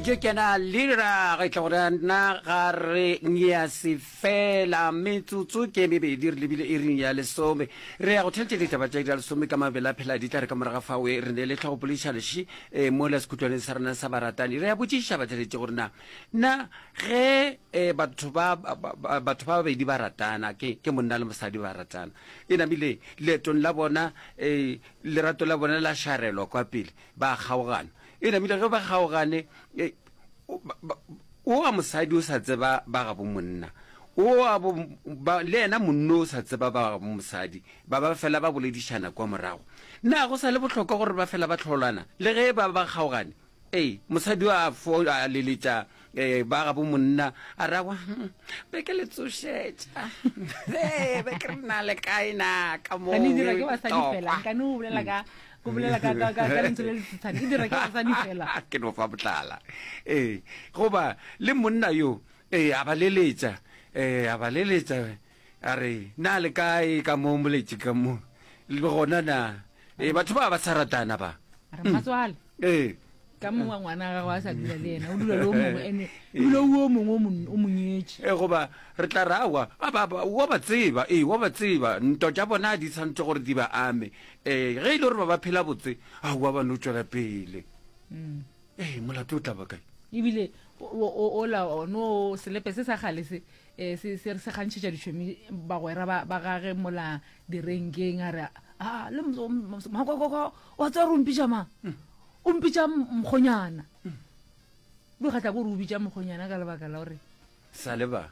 jo kena lira ge tla gore na ga re ngea se fela metsotso ke mebedi re lebile e ring ya lesome re ya go thetše ditaba tša dira lesome ka mabela phela di tla re ka moraga fa we re ne le tlhogo polišalši e eh, mo la sekhutlwaneng sa rena sa baratani re ya botšiša ba tšheletse gore na na ge eh, batho ba batho ba babedi ba ratana ke ke monna le mosadi ba ratana e namile leetong la bona eh, lerato la bona la šarelwa kwa pele Ba a kgaogana. E namile ge ba kgaogane, e, o, ba, ba, o wa mosadi o sa tseba ba gabo monna, o wa bo, ba, le yena monno o sa tseba ba gabo mosadi, ba ba fela ba boledišana kwa morago. Na go sa le bohlokwa gore ba fela ba tlholana le ge ba ba kgaogane? Ee, mosadi o a fo a leletša ee ba ga bo monna a ragwa hmm, be ke le tsošetša ee be ke re na le kae na ka moo e dira ke basadi fela ka ne o bolela ka o bolela ka ka ka lentswe le letshane e dira ke basadi fela ke no fa botlala ee goba le monna yo ee a ba leletša ee a ba leletša A re, Na le kae ka mo moletše ka mo? Le gona na? Ee, batho ba ba sa ratana ba. A re, Matswale. Ee. Ka mongwe wa ngwana wa gagwe a sa dula le ena, o dula le o mongwe, ene o dula o mongwe o mo nyetše. Ee, goba re tla ra wa, wa ba tseba, ee, wa ba tseba, nto tša bona di santšwe gore di ba ame. Ee, ge e le gore ba ba phela botse, aowa ba no tšwela pele. ee molato o tlaba kae ebile ola no selepe se sa gale se eh, se re se gantšhetša ditšhomi bagwera ba gage mola direnkeng a re a ah, le makokoko wa tswa re ompitša mang hmm. o mpitša mokgonyana hmm. bo kgatla ko re o bitša mokgonyana ka lebaka la gore sale ba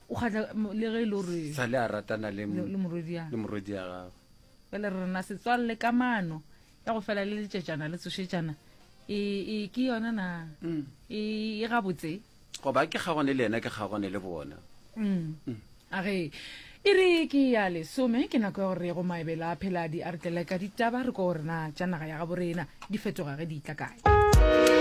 o kgatla le ge e le gore sale a ratana le morodi ya gago pele re rena setswalle kamano ya go fela le letšetšana le tsošetšana e e ke yona na Mm. e e gabotse goba ke kgagone le yena ke kgagone le bona Mm. a ge e re ke ya lesome ke nako ya gore go maebelo a phela di a re tlele ka ditaba re ko gore na tša naga ya gabo rena di fetoga ge di tla kae